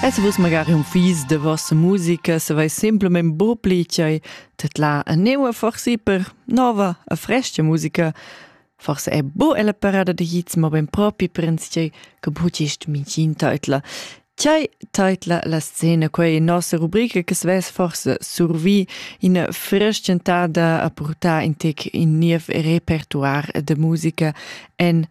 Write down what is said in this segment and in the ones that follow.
Es vus magari un fis de vossa musica se vai simplement bu pli chai tetla a neua forsi per nova a fresca musica forse è bu ella parada de hits ma ben propi prens chai che bu gist micin teitla Chai teitla la scena, quei nossa rubrica che sves forse survi in frestgentada a purtar in tec in niev repertoire de musica en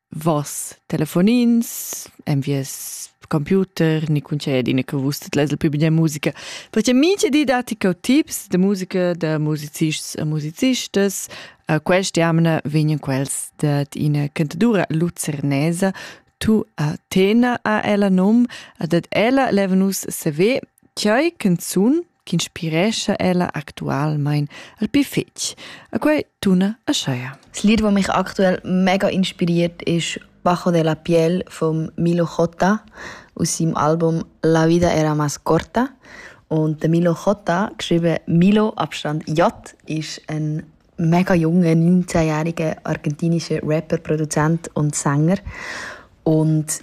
Voss telefonins, en vies computer, ni concedine che vus leis il pli bia musica. Perché mincha di dati co tips da musica da musicists e musicistas. Uh, Quest'jamna vegnan quels dad ina cantadura lucernesa tu a Tena a ella num, a dat ella leva nus saver, chai canzun ch'inspirescha ella actualmein al pi fetg. A quei tuna Aschea. Das Lied, das mich aktuell mega inspiriert, ist Bajo de la Piel von Milo Jota aus seinem Album La vida era más corta. Und der Milo Jota, geschrieben Milo Abstand J, ist ein mega junger, 19-jähriger argentinischer Rapper, Produzent und Sänger. Und